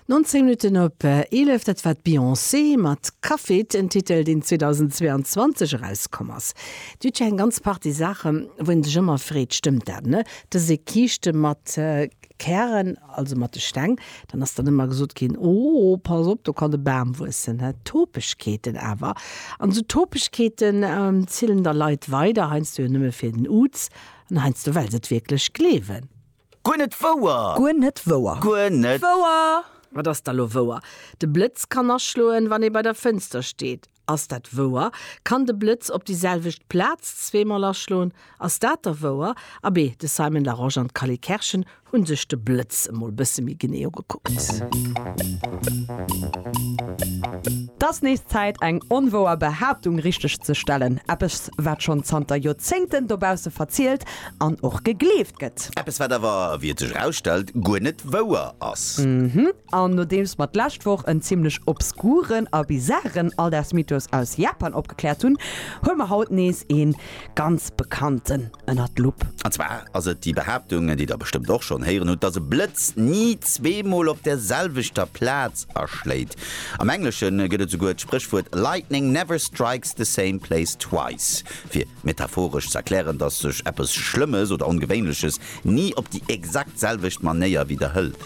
19 Minutten op 11, dat war d'Beyoncé mat Cuff It, en Titel, deen 2022 erauskomm ass. Dir hutt jo eng ganz Partie Saachen, wou een sech ëmmer freet, stëmmt dat, ne? Et ass ee Kiischte mat Kären, also mat de Steng. Dann ass dann ëmmer gesot ginn, oh, pass op, do kann e Bam wuessen, ne? Topegkeeten awer, an esou Topegkeeten zielen da Leit weider, heiansdo jo nëmme fir den Uz an heiansdo well se et wierklech gleewen. Guer net wouer! Guer net wouer! Guer net. Wouer! Wat ass da lo wouer? De Blëtz kann aschloen, wann ee bei der Fënster steet. Ass dat wouer? Kann de Blëtz op déi selwecht Plaz zweemol aschloen? Ass dat da wouer? Abee, de Simon Larosche an d'Cally Kerschen hu sech de Blëtz emol bësse méi genee ugekuckt. T'ass nees Zäit, eng onwouer Behaaptung richteg ze stellen. Eppes, wat schonn zanter Joerzéngten dobausse verzielt an och gegleeft gëtt. Eppes wat awer, wéi et sech erausstellt, guer net wouer ass. Mhm, an nodeems mer d'lescht Woch en zimlech obskuren a bizaren Alldagsmythos aus Japan opgekläert hunn, huele mer haut nees ee ganz bekannten ënner d'Lupp. An zwar ass et déi Behaaptung, déi der bestëmmt och schonn héieren hutt, dass e Blëtz ni zweemol op der selwechter Plaz aschléit. Am Englesche gëtt et souguer d'Spréchwuert Lightning never strikes the same place twice fir Metaphoresch z'erklären, datt sech eppes Schlëmmes oder Ongewéinleches ni op déi exakt selwecht Manéier widderhëlt.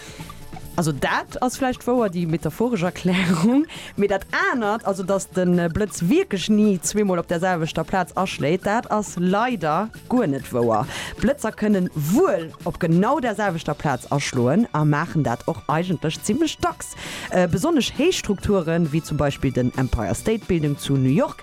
Also dat ass vläicht wouer, déi metaphoresch Erklärung. Mee dat anert, also datt de Blëtz wierklech ni zweemol op där selwechter Plaz aschléit, dat ass leider guer net wouer. Blëtzer kënnen wuel op genau där selwechter Plaz aschloen a maachen dat och eigentlech zimmlech dacks. Besonnesch héich Strukture wéi zum Beispill den Empire State Building zu New York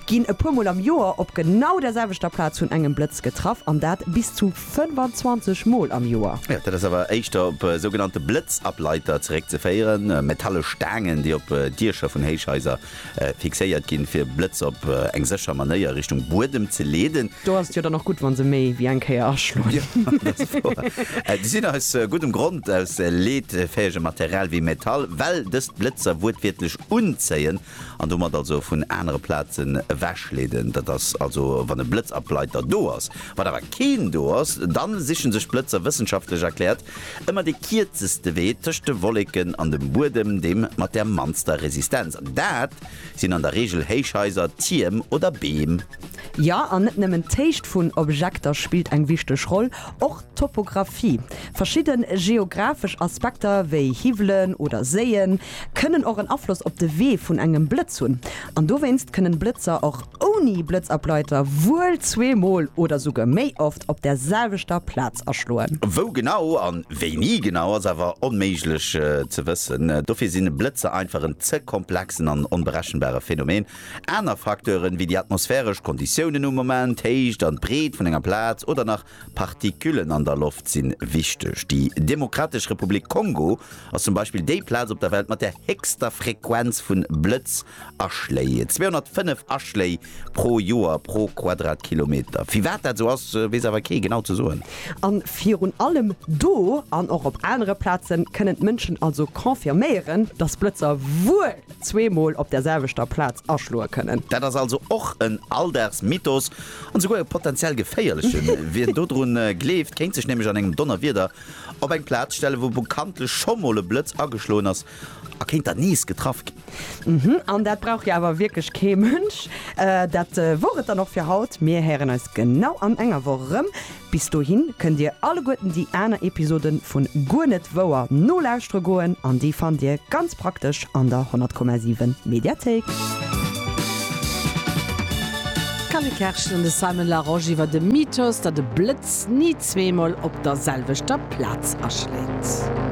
Ginn e puer Mol am Joer op genau der selwechter Plaz vun engem Blëtz getraff, an dat bis zu 25 Mol am Joer. Dat ass awer éischter op sougenannte Blëtzableiter zeréckzeféieren, metallesch Staangen, déi op Diecher vun Héichhaiser fixéiert ginn, fir Blëtz op eng sécher Manéier Richtung Buedem ze leeden. Do ass et jo dann och gutt, wa se méi wéi eng Kéier aschloen. Jo, dat ass wouer. Si sinn aus guddem Grond aus leetfäegem Material wéi Metall, well dëst d'Blëtzer wuertwiertlech unzéien An domat also vun anere Plazen ewech leeden. Dat ass also wann e Blëtzableiter do ass. Wann awer keen do ass, dann sichen sech d'Blëtzer, wëssenschaftlech erkläert, ëmmer dee kierzeste Wee tëscht de Wolleken an dem Buedem, deem mat der mannster Resistenz. An dat sinn an der Reegel Héichhaiser, Tierm oder Beem. Jo, an net nëmmen d'Héicht vun Objekter spillt eng wichteg Roll, och Topographie, Verschidde geographesch Aspekter wéi Hiwwelen oder Séien kënnen och en Afloss op de Wee vun engem Blëtz hunn. An dowéinst kënnen Blëtzer och ouni Blëtzableiter wuel zweemol oder souguer méi oft op der selwechter Plaz aschloen. Wou genau an wéini genau ass awer onméiglech ze wëssen. Dofir sinn Blëtzer einfach en ze komplexen an onberechenbare Phänomen. Aner Facteuren wéi déi atmosphäresch Konditiounen um Moment, d'Héicht an d'Breet vun enger Plaz oder nach Partiküllen an der Loft sinn wichteg. Déi Demokratesch Republik Kongo ass zum Beispill déi Plaz op der Welt mat der héchster Frequenz vun Blëtzaschléi, 205 Aschléi pro Joer pro Quadratkilometer. Firwat dat esou ass, weess awer kee genau ze soen. An virun allem do, an och op anere Plazen, kënnen d'Mënschen also confirméieren, dass Blëtzer wuel zweemol op der selwechter Plaz aschloe kënnen. Dat ass also och en Alldagsmythos an esouguer e potenziell geféierlechen. Wien dodrun gleeft, kéint sech nämlech an engem Donnerwieder op eng Plaz stellen, wou bekanntlech scho mol e Blëtz ageschloen ass a kéint dann nees getraff ginn. Mhm, an dat brauch jo awer wierklech kee Mënsch. Dat wor et dann och fir haut. Mir héieren eis genau an enger Woch erëm. Bis dohin kënnt dir alleguerten déi aner Episoden vun Guer net wouer nolauschtere goen an déi fannt dir ganz praktesch an der 100,7 Mediathéik. D'Carly Kerschen an de Simon Larosche iwwer de Mythos, datt e Blëtz ni zweemol op der selwechter Plaz aschléit.